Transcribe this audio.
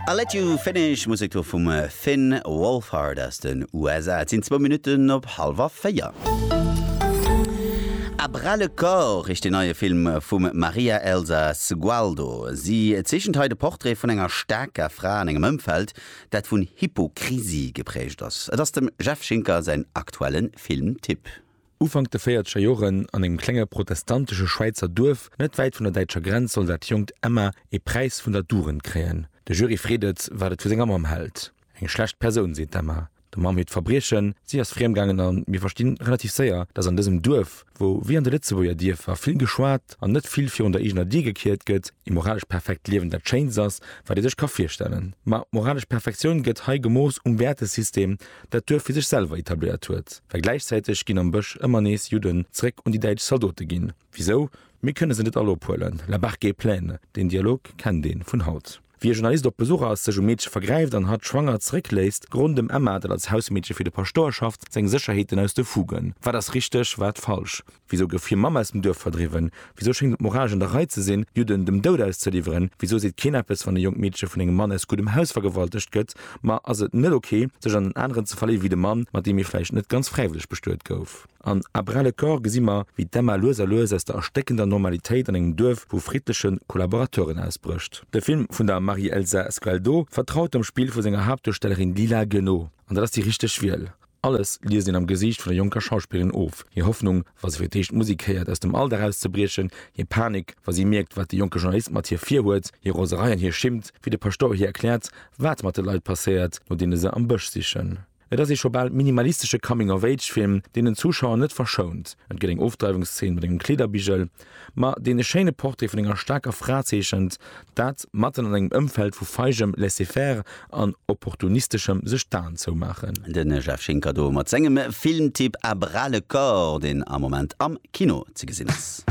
I'll Let You Finish, Musek do vum Finn Wolfhard aus den USA. Et sinn zwou Minutten op hallwer véier. À bras le corps heescht deen neie Film vum Maria Elsa Sgualdo. Si zeechent hei de Portrait vun enger staarker Fra an engem Ëmfeld, dat vun Hypokrisie geprägt ass. Et ass dem Jeff Schinker säin aktuelle Filmtipp. Ufank de véierzeger Joren, an engem klenge protestantesche Schwäizer Duerf net wäit vun der däitscher Grenz, soll dat jonkt Emma ee Präis vun der Dugend kréien. De Jury freet et, wat et vu senger Mamm hält. Eng schlecht Persoun, seet d'Emma. Der Mamm hiert Verbriechen, si ass friem gaangen an mir verstinn relativ séier, datt an dësem Duerf, wou wéi an de Lëtzebuerger Dierfer vill geschwat an net vill virun der eegener Dier gekiert gëtt, ee moralesch perfekt Liewen dat Schéinst ass, wat ee sech ka virstellen. Ma moralesch Perfektioun gëtt hei gemooss um Wäertesystem, dat Duerf fir sech selwer etabléiert huet, well gläichzäiteg ginn am Bësch ëmmer nees Judden zeréck un déi däitsch Zaldote ginn. Wisou? Mir kënne se net all ophuelen, la barque est pleine, deen Dialog kennt een vun haut. Wéi e Journalist op Besuch ass, sech um Meedche vergräift an hatt schwanger zeréckléisst, gronn dem Emma, dat als Hausmeedche fir de Paschtouer schafft, seng Sécherheeten aus de Fugen. Wat ass richteg, wat falsch? Wisou gouf hir Mamm aus dem Duerf verdriwwen? Wisou schéngt et moralesch an der Rei ze sinn, Judden dem Doud auszeliwweren? Wisou seet keen eppes, wann e jonkt Meedche vun engem Mann aus guddem Haus vergewaltegt gëtt? Ma ass et net ok, sech an en aneren ze verléiwe wéi de Mann, mat deem ee vläicht net ganz fräiwëlleg bestuet gouf? An À bras le corps gesi mer, wéi d'Emma lues a lues aus der erstéckender Normalitéit an engem Duerf vu friddleche Kollaborateuren ausbrécht. De Film vun der Marie-Elsa Sgualdo vertraut dem Spill vu senger Haaptduerstellerin Lila Guenot. An dat ass déi richteg Wiel. Alles liest een am Gesiicht vun der jonker Schauspillerin of, hir Hoffnung, wa se fir d'éischt d'Musek héiert, aus dem Alldag auszebriechen, hir Panik, wa si mierkt, wat de jonke Journalist mat hir virhuet, hir Roserei an hir Schimmt, wéi de Paschtouer hir erkläert, wat mat de Leit passéiert, no deene se am Bësch sichen. Et ass ee scho bal minimalistesche Coming-of-age-Film, deen den Zuschauer net verschount. Et gëtt eng Ofdreiwungsszeen mat engem Kleederbigel, Ma dee schéine Portrait vun enger staarker Fra zeechent dat, matten an engem Ëmfeld vu feigem Laisser-faire an opportunisteschem sech d'Aen zoumaachen. De Jeff Schinker do mat sengem Filmtipp A bras le corps, deen am Moment am Kino ze gesinn ass.